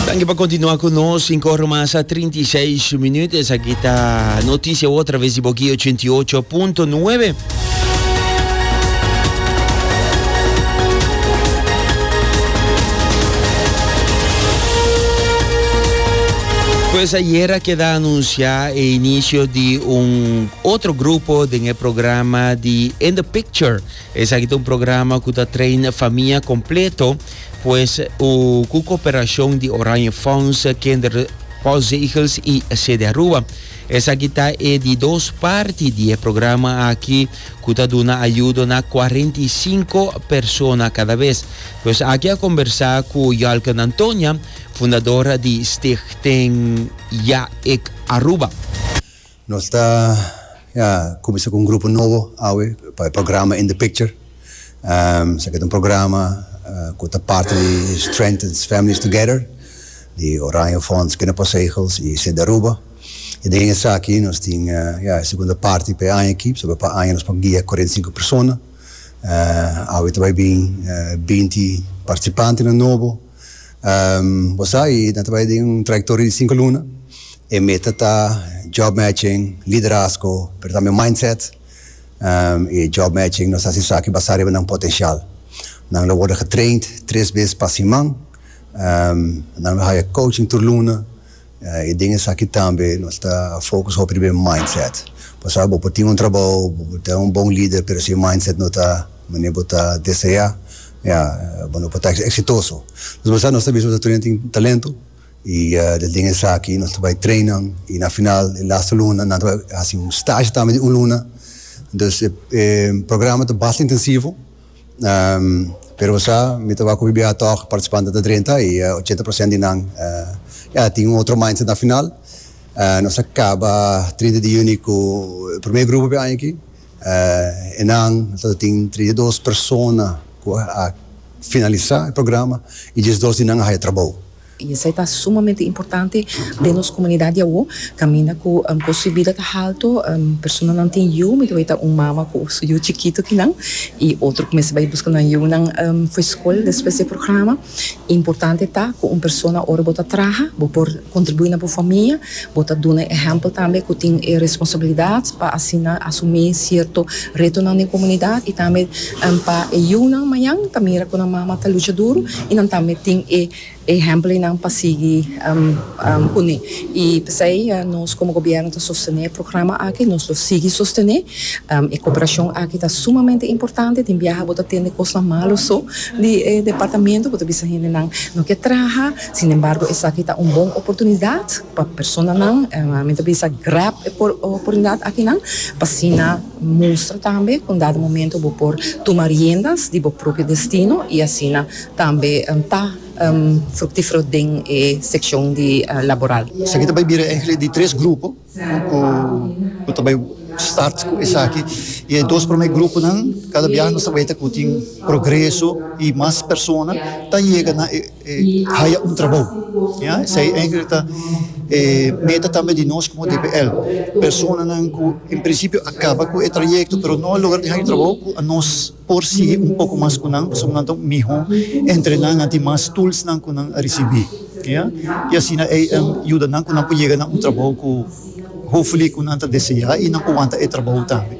Danki pa kontinua ku nos, 5 ora mas a 36 minuut. Esaki ta notisia wou traves di Boki 88.9. Pues ayer a queda anunciado el inicio de un otro grupo en el programa de In the Picture. Esaki ta un programa ku ta train famia kompleto, pues u ku koperashon di Oranje Fonds, Kinder Postzegels i Sede Aruba. Esaki ta e di dos parti di e programa aki ku ta duna ayudo na kuarenta i sinku persona kada bes. Pues aki a kombersá ku Yalken Antonia, fundador di Stichting Ja Ik Aruba. Nos ta a cuminsa cu un grupo nobo awe pa e programa In The Picture. Esaki ta un programa cu ta parti di Strengthens Families Together di Oranje Fonds, Kinderpostzegels y Sint Aruba. Y den esaki nos tin e segunda parti pa e aña aki, pasobra pa aña nos por guia cuarenta y cinco persona. Awe ta bay bin binti participantenan nobo. Bo sa, i nan ta bai den un trayektoria di sinku luna. E meta ta job matching, liderazgo, pero tambe mindset. E job matching nos ta hasi esaki basá riba nan potenshal. Nan lo wòrdu getraind tres bes pa siman. Nan lo haya coaching tur luna. I den esaki tambe nos ta focus hopi riba e mindset. Pasobra bo por tin un trabou, bo por ta un bon lider, pero si e mindset no ta manera bo ta deseá, ya bo no por ta exitoso. Entonces bo sa nos ta bisa bo ta turinan tin talento i del den esaki nos ta bai train nan i na final e laster luna nan ta bai hasi un stage tambe di un luna. Entonces e programa ta basta intensivo Pero bo sa, mi ta wak ku BBH tòg partisipantenan ta drenta i ochenta prosènt di nan ya tin un otro mindset na final. Nos a kaba trinta di yüni ku e promé grupo p'e aña aki. E nan lo tin trinta i dos persona ku a finalisá e programa i diesdos di nan a haya trabou. I esei ta sumamente importante den nos komunidat di awor, kaminda ku kost di bida ta haltu, personanan tin yu, mi ta weta un mama ku su yu chikitu kinan, i otro ku mester bai buska nan yunan for skol despues di e programa. Importante ta ku un persona ora bo ta traha bo por kontribuí na bo famia, bo ta duna e ehèmpel tambe ku tin e responsabilidat pa asina asumí sierto retonan den komunidat i tambe pa e yunan mañan ta mira ku nan mama ta lucha duru i nan tambe tin e Ehemplonan pa sigui pone. I p'esei nos komo gobièrnu ta sostené e programa aki, nos lo sigui sostené. E koperashon aki ta sumamente importante. Tin biaha bo ta tende kosnan malu so di e departamentu. Bo ta bisa hendenan no ke traha. Sin embargo esaki ta un bon oportunidat pa personanan, mi ta bisa, grab e oportunidat akinan pa asina. Mustra tambe cu dado momento bo por tuma riendas di bo propio destino y asina tambe ta fructifero den e seccion di laboral. Esaki ta bay bira enkele di tres grupo cu ta bay start cu esaki y e dos primer gruponan cada bia nos ta bay ta cu tin progreso y mas persona ta yega na e. E haya un trabou. Esei enkele ta e meta tambe di nos komo DPL. Personanan ku en prinsipio a kaba ku e trayekto pero no a logra di haña trabou ku nos por sigui un poko mas ku nan pasobra nan ta un mihó entrená, nan tin mas tulsnan ku nan a risibí. I asina ei a yuda nan ku nan por yega na un trabou ku hopefully ku nan ta deseá i nan por wanta e trabou tambe.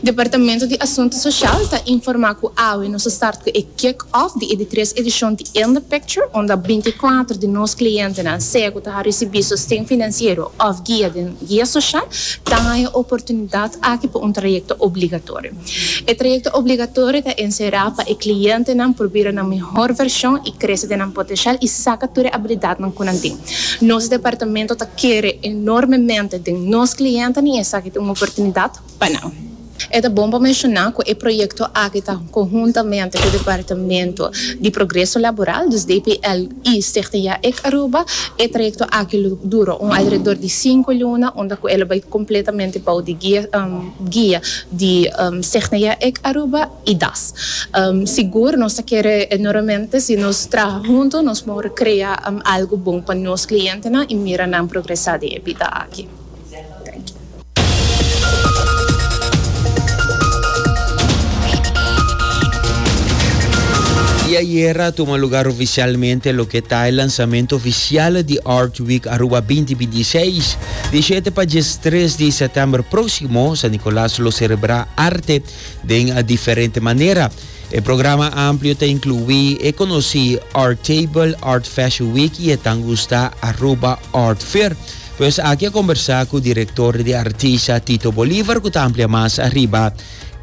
Departamento di Asuntu Sosial ta informa ku awe nos a start ku e kick off di e di tres edishon di In the Picture unda binti i kuater di nos klientenan, sea ku ta a risibí sosten finansiero òf guia den guia sosial, ta haña e oportunidat aki pa un trayekto obligatorio. E trayekto obligatorio ta enserá pa e klientenan por bira nan mihor vershon i krese den nan potenshial i saka tur e abilidatnan ku nan tin. Nos departamento ta kere enormemente den nos klientenan i esaki ta un oportunidat pa nan. E ta bon pa menshoná ku e proyekto aki ta konhuntamente ku Departamento di Progreso Laboral, dus DPL, i Stichting Ya Ik Aruba. E trayekto aki lo dura un alredor di sinku luna unda ku e lo bai kompletamente bou di guia di Stichting Ya Ik Aruba. I das. Sigur nos ta kere enormemente si nos traha huntu nos por krea algu bon pa nos klientenan i mira nan progresá den e bida aki. Thank you. Diayer a tuma lugar oficialmente loke ta e lanzamento oficial di Art Week Aruba binti binti i seis. Di shete pa djestres di setember proximo, San Nicolas lo cerebra arte den a diferente manera. E programa amplio ta inclui e conoci Art Table, Art Fashion Week y e tan gusta Aruba Art Fair. Pues aki a conversa cu director de artista Tito Bolivar cu ta amplia mas arriba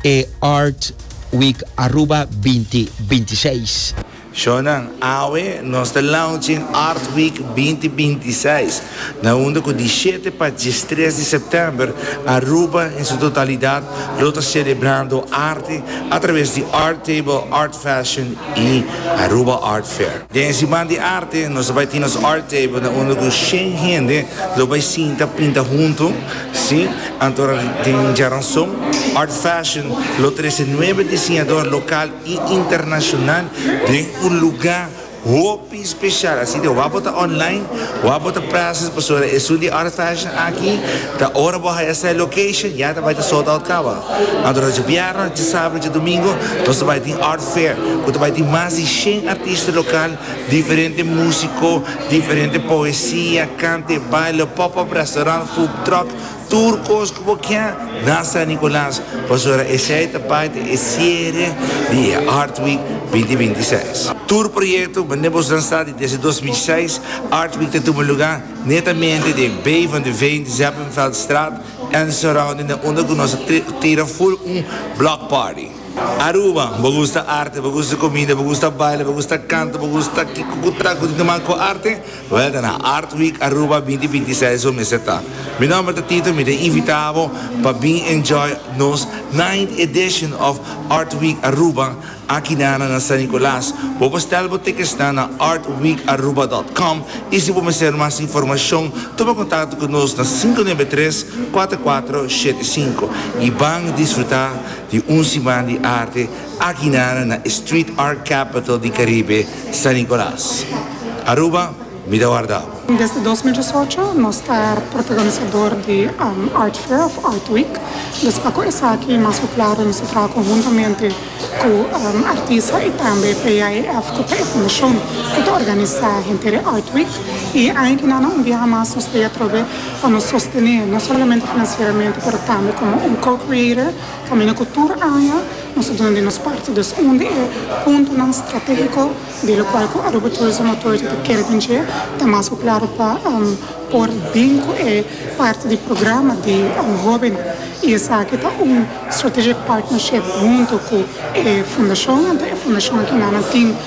e Art Week Aruba 2026. Shownan, Awe nos ta launching Art Week binti binti i seis, na unda ku di shete pa diestres di sèptèmber Aruba en su totalidat lo ta selebrando arte atraves di Art Table, Art Fashion i Aruba Art Fair. Den e siman di arte nos ta bai tin nos Art Table na unda ku shen hende lo bai sinta pinta huntu, si, anto den djaranson. Art Fashion lo trese nuebe disiñador lokal. i internashonal den un lugá hopi speshal. Asina wapot ta online, wapot ta present pasobra esun di e oras fashion aki ta ora bo haya set location ya ta bai ta sold out kaba. Anto ta dje bièrnè, dje sabado, dje domingo nos ta bai tin art fair ku ta bai tin mas di shen artista lokal, diferente músiko, diferente poesia, kante, baile, pop-up restaurant, food truck, Tur cos cu bo kia na San Nicolas pasobra esey ta parti e cierre di e Art Week binti binti seis. Tur proyecto mende bo lansa di desde dos mil seis, Art Week ta tuma luga netamente den Bay van de Veen, Zeppenveldstraat en surrounding den unda cu nos ta tira full un block party. Aruba, bo gusta arte, bo gusta comida, bo gusta baila, bo gusta canta, bo gusta kico cu ta cu tin te manga cu arte? Wel ta na Art Week Aruba binti binti seis su mester ta. Mi nomber ta Tito mi ta invita bo pa bin enjoy nos ninth edition of Art Week Aruba aki na na na San Nicolas. Bo por stel bo tickets nan na artweekaruba dot com y si bo mester mas informacion tuma contacto cu nos na sinku nuebe tres cuater cuater shete sinku y ban disfruta di un siman di arte Akinara na e street art capital di Caribe, San Nicolas, Aruba, mi ta wardao. Desde dos mil dieciocho nos ta protagonisador di Art Fair of Art Week, dus pa cu esaki mas cu claro nos ta traha conhuntamente cu artista y tambe PAEF cu ta e fundacion cu ta organisa henter e Art Week y aña que na un biaha mas nos ta atrobe pa nos sostene no solamente financieramente pero tambe como un co-creator Camina cu tur aña nos a duna di nos parti, dus un di e puntonan strategico di locual cu Aruba Tourism Authority ta kere cuncié ta mas cu claro pa por bin cu e parti di programa di hobennan y esaki ta un strategic partnership hunto cu e fundacion, anto e fundacion aki nan tin.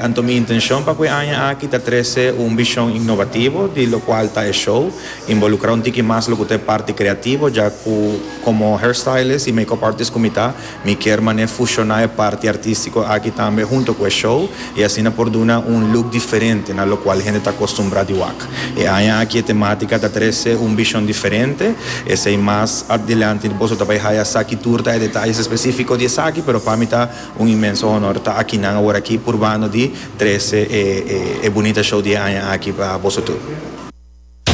Anto mi intencion pa cu e aña aki ta trece un vision innovativo di locual ta e show, involucra un tiki mas locu ta e parti creativo, ya cu como hairstylist y makeup artist cu mi ta, mi kier mane fusiona e parti artistico aki tambe hunto cu e show y asina por duna un look diferente na locual hende ta acostumbra di wak. E aña aki e tematica ta trece un vision diferente, esey mas adelanti boso ta bay haya esaki tur ta e detalles especifico di esaki, pero pa mi ta. Un inmenso honor ta akinan awor aki purbando di trese e e e bunita show di e aña aki pa boso tur.